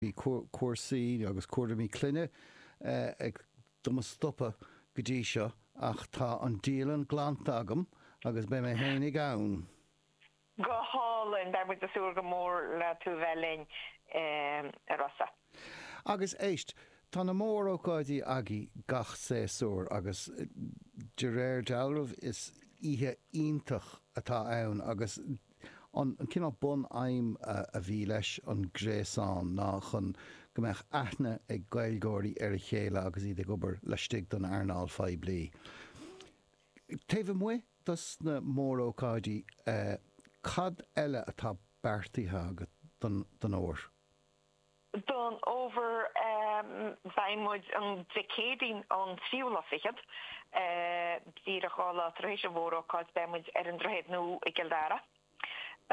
Bhí cúrsaí agus cúraimí clainne ag do mo stopadh go dtí seo ach tá an dialann glanta agam agus beidh mé fhéinig ann. Go hálainn. Beidh muid ag súil go mór le tú bheith linn a Rossa. Agus éist, tá na mór-ócáidí agaibh gach séasúr agus de réir dealramh is oíche iontach atá ann agus. An cineál bunaidhm a bhí leis an gréasán ná chun go mbeadh aithne ag Gaeilgeoirí ar a chéile agus iad ag obair laistigh den earnáil phoiblí. Taobh amuigh dos na mórócáidí cad eile atá beartaithe agat don fhómhar? Don fhómhar beidh muid an Dé Céadaoin an tríú lá fichead, díreach dhá lá tar éis an mhórócáid beidh muid ar an Droichead Nua i gCill Dara.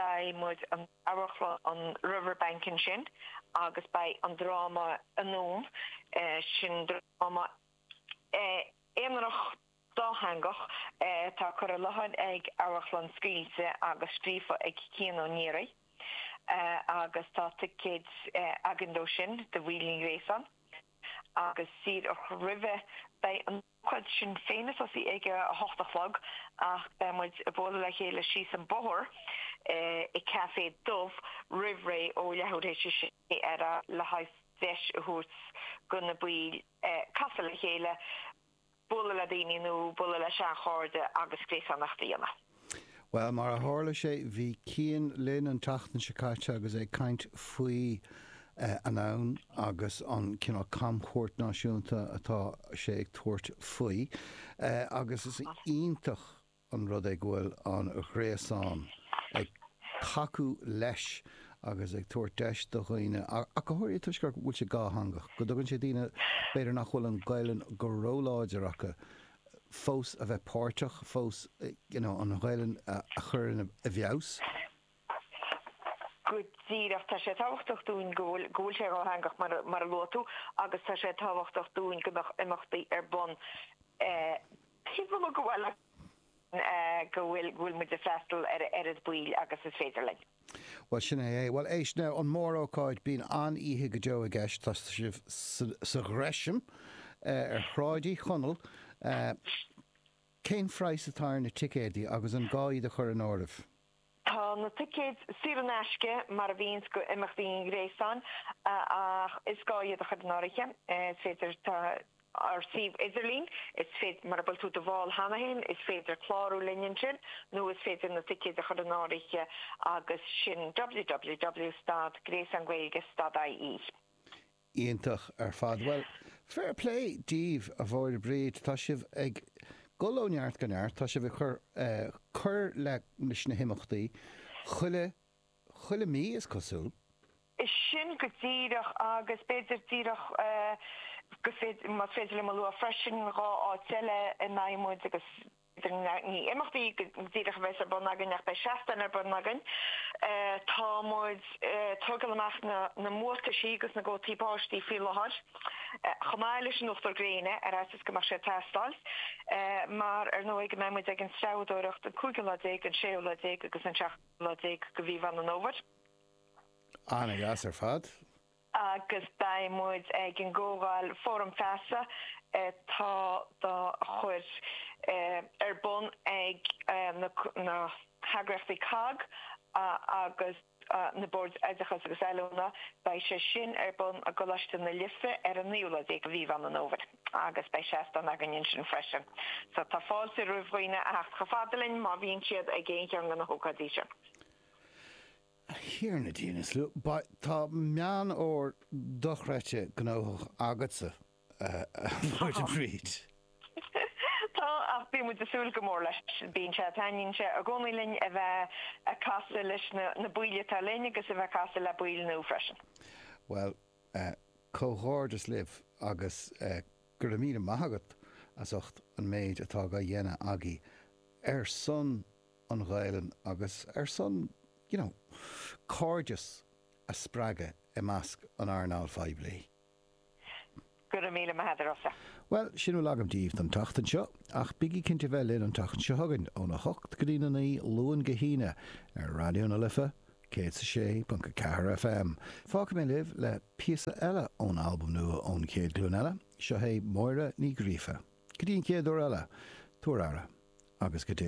Beidh muid in Amharclann an Riverbank ansin agus beidh an dráma Anonn, sin dráma aonarach, Dátheangach, atá curtha i láthair ag Amharclann Scaoilte agus scríofa ag Cian Ó Náraigh agus tá ticéid againn dó sin do bhaill an Ghréasáin agus díreach roimhe beidh an ócáid sin féin ag tosaí ag a hocht a chlog ach beidh muid ag bualadh le chéile síos an bóthar i Café Dubh roimh ré ó leathuair tar éis a sé ar le haghaidh deis a thabhairt do na baill casadh le chéile bualadh le daoine nua, bualadh le seanchairde agus gréasánacht a dhéanamh. Bhuel, mar a tharla sé, bhí Cian linn an tseachtain seo caite agus é ag caint faoi Anonn agus an cineál camchuairt náisiúnta atá sé ag tabhairt faoi agus is iontach, an rud é go bhfuil an ghréasán ag tacú leis agus ag tabhairt deis do dhaoine, ach go háirithe toisc gur, go bhfuil sé dátheangach, go dtugann sé daoine b'fhéidir nach bhfuil an Ghaelainn go róláidir acu, fós a bheith páirteach, fós you know an Ghaelainn a chur ina, i bhfeabhas. Go díreach, tá sé tábhachtach dúinn go bhfuil, go bhfuil sé dátheangach mar, mar a luaigh tú agus tá sé tábhachtach dúinn go mbeadh imeachtaí ar bun eh, Cén mholadh go bhfuil agat chun go bhfuil muid ag freastal ar a oiread baill agus is féidir linn? Bhuel, sin é é. Bhuel, éist, now, an mórócáid, bíonn an-oíche go deo i gceist, tá sibh sa Ghresham, ar Shráid Uí Chonaill, cén phraghas atá ar na ticéidí agus an gá iad a chur in áireamh? Tá na ticéid saor in aisce mar a bhíonns do imeachtaí an ghréasáin ach is gá iad a chur in áirithe. Is féidir tá ár suíomh idirlín, is féidir mura bhfuil tú i do bhall cheana féin is féidir clárú linn ansin nó is féidir na ticéid a chur in áirithe agus sin www.stad, gréasán Gaeilge, stad.ie. Iontach ar fad. Bhuel, fair plé díbh, a Mháire Bríd. Tá sibh ag dul ó neart go neart. Tá sibh ag cur cur le leis na himeachtaí chuile chuile mí, is cosúil. Sin go díreach agus b'fhéidir díreach go bhféidir, más féidir liom a lua freisin, dhá áit eile a mbeidh muid agus. Ní imeachtaí go díreach a bheas ar bun againn ach beidh seastáin ar bun againn. Tá muid ag tógáil amach na mbuataisí agus na gcótaí báistí faoi láthair, chomh maith leis an uachtar gréine, ar fhaitíos go mbeadh sé ag teastáil, mar ar ndóigh go mbeidh muid ag an treabhadóireacht an cúigiú lá déag, an séú lá déag agus an seachtú lá déag de mhí Mheán an Fhómhair. Ana dheas ar fad. agus beidh muid ag an gcomhdháil Fóram Feasa atá dá chur ar bun ag na heagraíochtaí COGG agus na Boird Oideachais agus Oiliúna, beidh sé sin ar bun i gColáiste na Life ar an 19 lá de mhí Mheán an Fhómhair agus beidh seastán againn ansin freisin. So tá fáilte roimh dhaoine a theacht chomh fada linn má bhíonn siad ag aon cheann de na hócáidí sin. A Thiarna Dia inniu, tá Meán Fómhair dochreidte gnóthach agatsa, a Mháire Bríd. Tá, ach bíonn muid ag súil go mór leis. Bíonn sé, taitníonn sé i gcónaí linn a bheith ag casadh leis na baill atá linn agus a bheith ag casadh le baill nua freisin. Bhuel, comhghairdeas libh agus go raibh míle maith agat as ucht an méid atá á dhéanamh agaibh ar son an Ghaelainn agus ar son you know cairdeas a spreagadh i measc an earnáil phoiblí. Go raibh míle maith agat, a Rossa. Bhuel, sin a bhfuil agam díbh don tseachtain seo, ach bígí cinnte bheith linn an tseachtain seo chugainn, ón 8 go dtí'n 9, Luan go hAoine, ar Raidió na Life 106.4 FM. Fágfaidh mé libh le píosa eile ón albam nua ón Chéad Ghlúin Eile, seo hé Máire Ní Ghríofa. Go dtí an chéad uair eile, tabhair aire, agus go dtí.